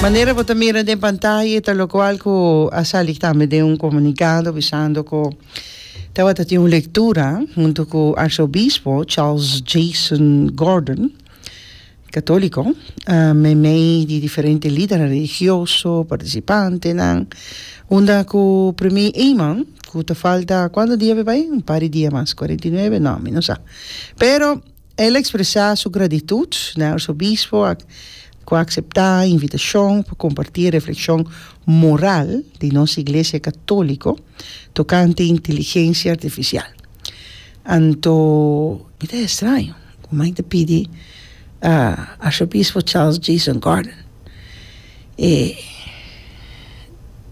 Manera bo ta mira den pantaya e ta lokual ku a sali tambe den un komunikado bisando ku tabata tin un lektura huntu ku arsobispho Charles Jason Gordon, katoliko, meimei di diferente lidernan religioso, partisipantenan, unda ku Premi Eman ku ta falta kuantu dia mi bai? Un par di dia mas, kuarenta i nuebe? No, mi no sa. Pero. El a expresa su gratitut na e Arzobispo ac cu a acepta e invitacion pa comparti e reflexion moral di nos Iglesia Catolico tocante inteligencia artificial. Anto mi ta extraño cu mi ta pidi Arzobispo Charles Jason Gordon e,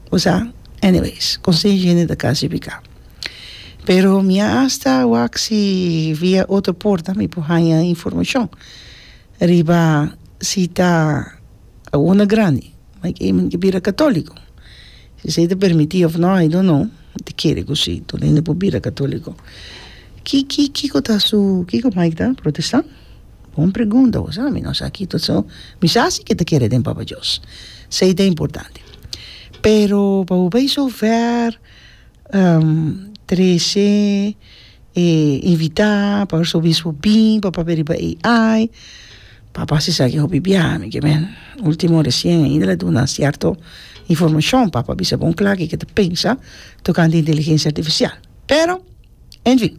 bo sa, anyways, con sey hende ta casifica. pero mi a hasta wak si via otro porta mi por haña informacion riba si ta awor grandi mi ke mi ke bira catolico si esei ta permiti of no I don't know mi ta kere cu si tur hende por bira catolico ki ki kiko ta su kiko mai ta protestan bon pregunta awor sa mi no sa ki ta su mi sa si ke ta kere den papa dios esei ta importante pero pa bo bai su ver trece e invita pa arzobispo bin pa papia riba e ai papá si sa ke hopi bia mi ke men ultimo recien ainda lo duna cierto informacion papá a bisa bon cla ke ke ta pensa tocante inteligencia artificial pero enfin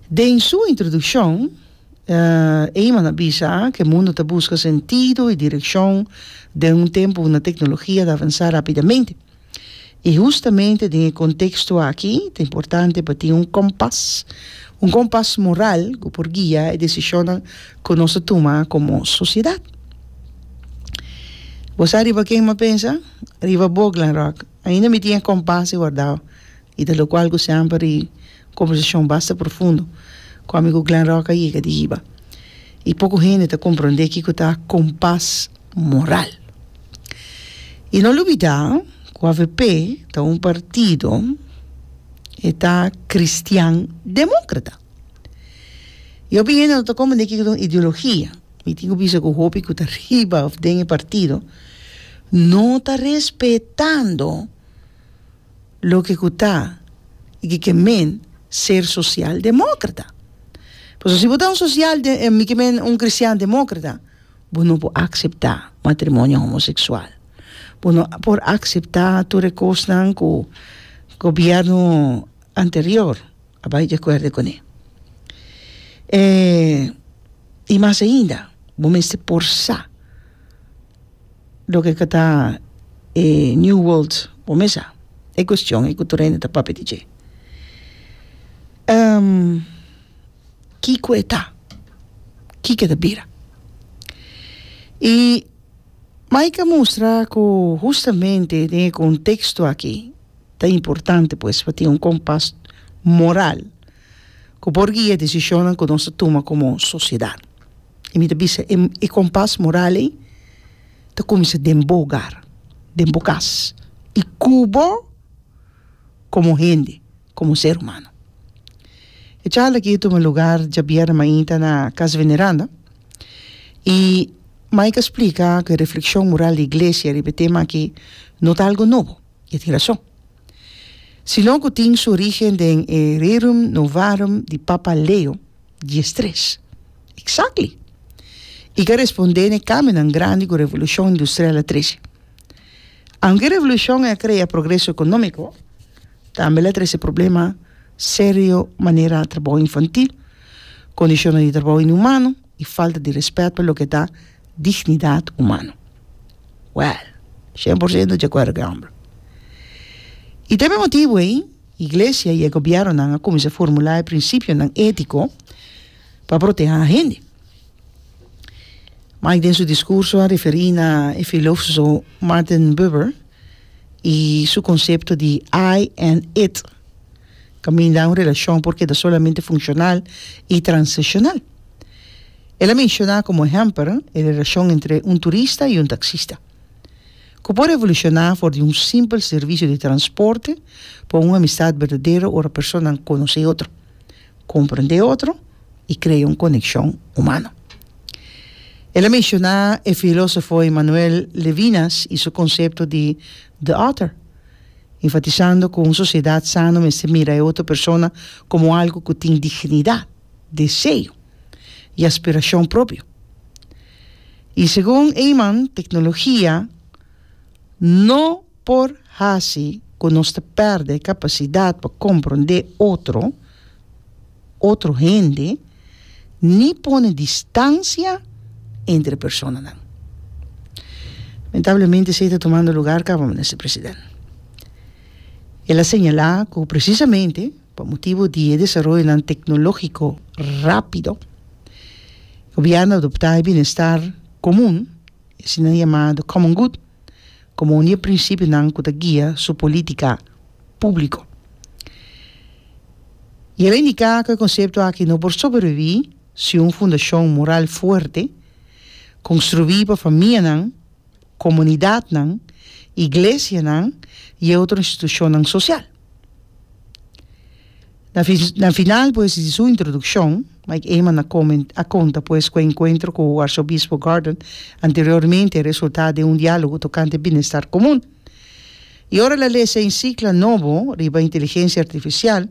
den su introduccion Eyman a bisa ke mundo ta busca sentido y direccion den un tempo una tecnologia ta avansa rapidamente. I hustamente den e konteksto aki ta importante pa tin un kompas, un kompas moral ku por guia e desishonnan ku nos ta tuma komo sosiedat. Bo sa riba ken mi a pensa? Riba bo, Glenrock. Ainda mi tin e kompas ei wardá i ta lokual ku semper i. Konversashon basta profundo ku amigu Glenn Rock a yega di hiba, i poko hende ta komprondé kiko ta kompas moral. I no lubidá ku avp ta un partido e ta kristian demókrata. I hopi hende no ta komprondé kiko ta un ideologia. Mi tin ku bisa ku hopi ku ta riba òf den e partido no ta respetando. loke ku ta i ke ke men ser sosial demókrata. Pasobra si bo ta un sosial de mi ke men un kristian demókrata bo no por akseptá matrimonio homoseksual, bo no por akseptá tur e kosnan ku gobièrnu anterior a bai di akuerdo kuné. I mas ainda bo mester porsá. Loke ke ta e New World por mesa e cuestion e cu tur hende ta papia di dje. Kico e ta? Kico e ta bira? Y Mike a mustra cu hustamente den e contexto aki ta importante pues pa tin un compas moral. ku por guia e desishonnan ku nos ta tuma komo sosiedat. I mi ta bisa e e kompas moral ei ta kuminsá den bo ogar, den bo kas i ku bo komo hende, komo ser humano. E charla aki a tuma lugar djabièrnè mainta na Casa Veneranda i Mike a splika ku e reflekshon moral di Iglesia riba e tema aki no ta algu nobo. i e tin rashon. Si lo ku tin su orígen den e rerum novarum di Papa Leo diestres. Exactly! I ka respondé na e kambionan grandi ku Revolushon Industrial a trese. Aunke e revolushon ei a krea progreso ekonómiko, tambe el a trese problema serio manera trabou infantil, kondishonnan di trabou inhumano, i falta di respet pa loke ta dignidat humano. Wèl, shen por sento dje kuerdo ku e hòmber. I ta e motibu ei iglesia i e gobièrnunan a kuminsá formulá e prinsipionan étiko pa protehá hende. Mike den su diskurso a referí na e filósoso Martin Buber i su konsepto di I and it. Kaminda un relashon por keda solamente funshonal i transashonal. El a menshoná komo ehèmper e relashon entre un turista i un taksista, ku por evolushoná for di un simpel servisio di transporte pa un amistat berdadero ora personanan konosé otro, komprendé otro i krea un konekshon humano. El a menshoná e filósofo Emmanuel Levinas i su konsepto di The Author. enfatisando ku un sosiedat sano mester mira e otro persona komo algu ku tin dignidat, deseo i aspirashon propio. I segun Eyman, teknologia no por hasi ku nos ta pèrdè e kapasidat pa komprondé otro, otro hende, ni pone distansia entre personanan. Lamentablemente esei ta tumando lugar kaba, Minister President. El a señala ku presisamente pa motibu di e desaroyonan teknologiko rápido, Gobièrnu a adoptá e bienestar komun, e asina yamá common good, komo un di e prinsipionan ku ta guia su polítika públiko. I el a indiká ku e konsepto aki no por sobrevivir sin un fundashon moral fuerte, konstruí pa famianan, komunidatnan, iglesianan i e otro institushonnan sosial. Na final pues di su introdukshon, Mike Eman a konta pues ku e enkuentro ku Arsobispo Gordon anteriormente a resultá den un diálogo tokante binestar komun. I ora el a lesa e ensikla nobo riba inteligensia artifisial,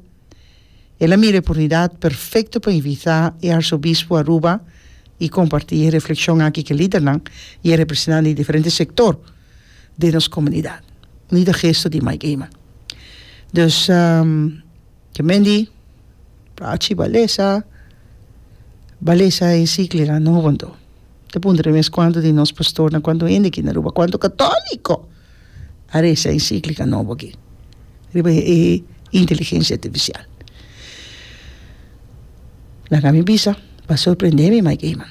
el a mira e oportunidat perfekto pa invitá e Arsobispo Aruba i kompartí e reflekshon aki ku lidernan i e representan di diferente sektor, den nos komunidat. Ini ta gesto di Mike Eman. Dus ke men di Prachi Balesa, Balesa Ensikliga no hobontó. Ta puntra mes kuantu di nos pastornan, kuantu hende aki na Aruba, kuantu katòliko a resa e ensikliga nobo aki riba e inteligensia artifisial. Laga mi bisa pa sorprendé mi Mike Eman.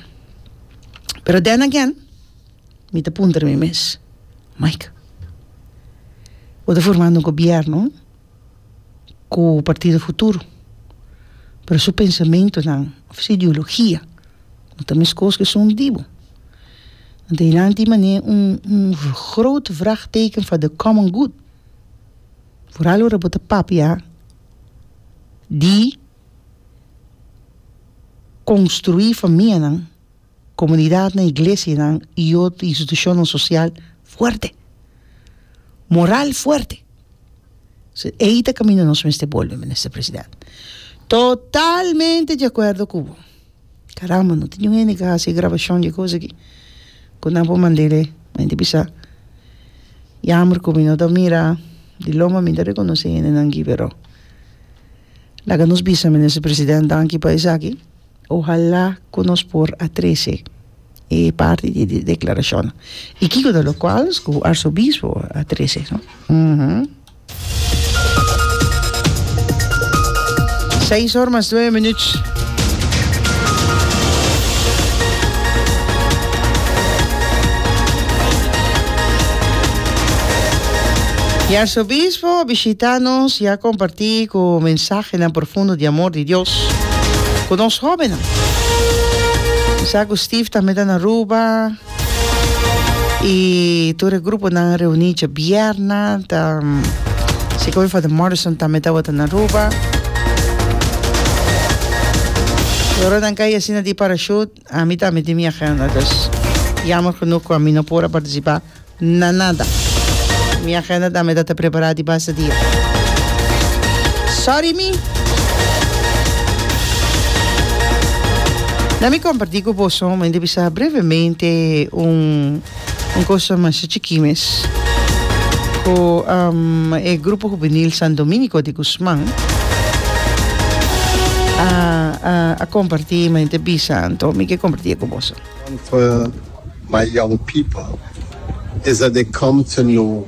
Pero then again. Mi ta puntra mi mes, Mike, bo ta formando un gobièrnu ku Partido Futuro, pero su pensamentunan òf su ideologia no ta meskos ku esun di bo. Anto hilanti tin manera un un grote vraagteken for the common good. Vooral ora bo ta papia di konstruí famianan komunidatnan, iglesianan i otro institushonnan sosial fuerte, moral fuerte. So ei ta kaminda nos mester bolbe, Minister President. Totalmente di akuerdo ku bo. Karamba, no ta niun hende ku a hasi e grabashon di e kos aki ku nan por mand'e mente bisa. Yamber ku mi no ta mira di lo, ma mi ta rekonosé e hendenan aki, pero laga nos bisa, Minister President, danki pa esaki. Ohalá ku nos por a trese e parti di e deklarashonnan. I kiko ta lo kwals ku arsobispo a trese? Seis or mas nuebe minüt. E arsobispo a bishitá nos i a kompartí ku mensahenan profundo di amor. Dios ku nos hóbennan. Mi sa ku Steve tambe ta na Aruba i tur e gruponan reuní dje bierna. Ta siko mi Father Morrison tambe tabata na Aruba. Ora nan kai asina di parashut. A mi tambe tin mi agenda, dus jammer genoeg ku a mi no por a partisipa na nada. Mi agenda tambe ta ta prepara di basta dia. Sorry mi. Na mi comparti ku boso, mi ta bisa brevemente un Un cosa masha chikí mes cu e Grupo Juvenil San Dominico di Guzman a compartí y mente a bisa anto mi ke compartí e cu boso. Come to my young people is that they come to know.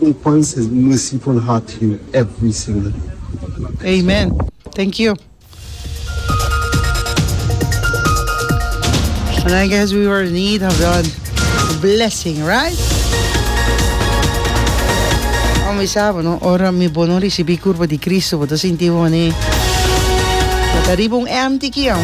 Open ses merciful heart to you every single day. God bless you. Amen thank you. And I guess we were in need of that blessing right? Como mi sa bono ora mi bo no ricibi curpo di Cristo bo ta sinti bo mane bo ta riba un empty kion.